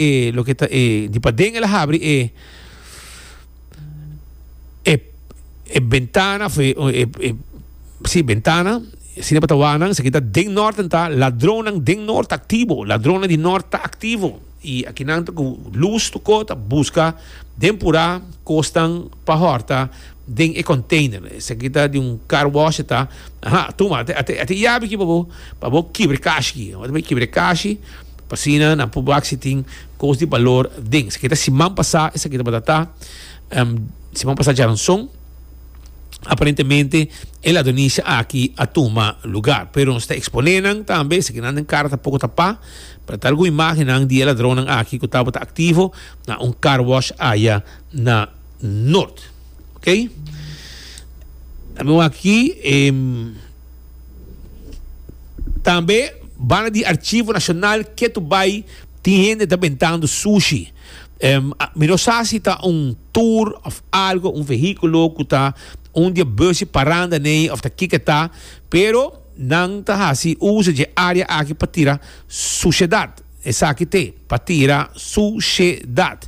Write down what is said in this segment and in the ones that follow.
e loke ta e di paden el a habri e e bentana of e e si bentana asina e patawar nan esaki ta den norte ta ladron nan den norte aktivo ladronnan di norte ta aktivo i aki nan ta ku lus tokó ta buska den pura kosnan pa hòrta den e konteiner esaki ta di un car wash ta aha tuma ate ate yabi aki pa bo pa bo kibre kashi ata bo kibre kashi Asina nan por wak si tin cos di balor den. Esaki ta siman pasa, esaki tabata ta siman pasa djaranson. Aparentemente e lado Nisha aki a tuma lugar, pero nos ta expone nan tambe, esaki nan den cara tampoco ta pa. Pero ta algun imagennan di e ladronnan aki cu tabata activo na un car wash aya na Noord. Ok. Dame wak aki. Tambe banda di Archivo Nacional ketu bai tin hende ta bentando sushi. Em, a- mi no sa si ta un tour of algo, un vehiculo cu ta un di e busnan parando aney of ta kiko e ta, pero nan ta haci uso dje area aki pa tira sushedad. Esaki t'e, pa tira sushedad.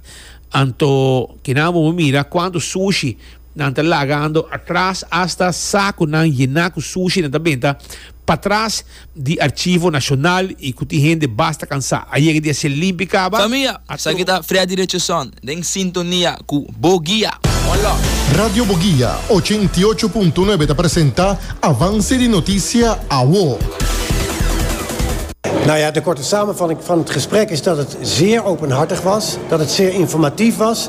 Anto, kinan a moe mira cuanto sushi Nan ta lagando atras asta sa cu nan yena cu sushi nan ta benta patras di Archivo Nacional y cu tin hende basta cansa. A yega di hace limpi caba. Famia, esaki ta Freddy Richardson den sintonia cu Bo Guia. One love. Radio Boguia ochenta i ocho punto nuebe ta presenta Avance di Noticia Awo. Nou ja, de korte samenvatting van het gesprek is dat het zeer openhartig was, dat het zeer informatief was.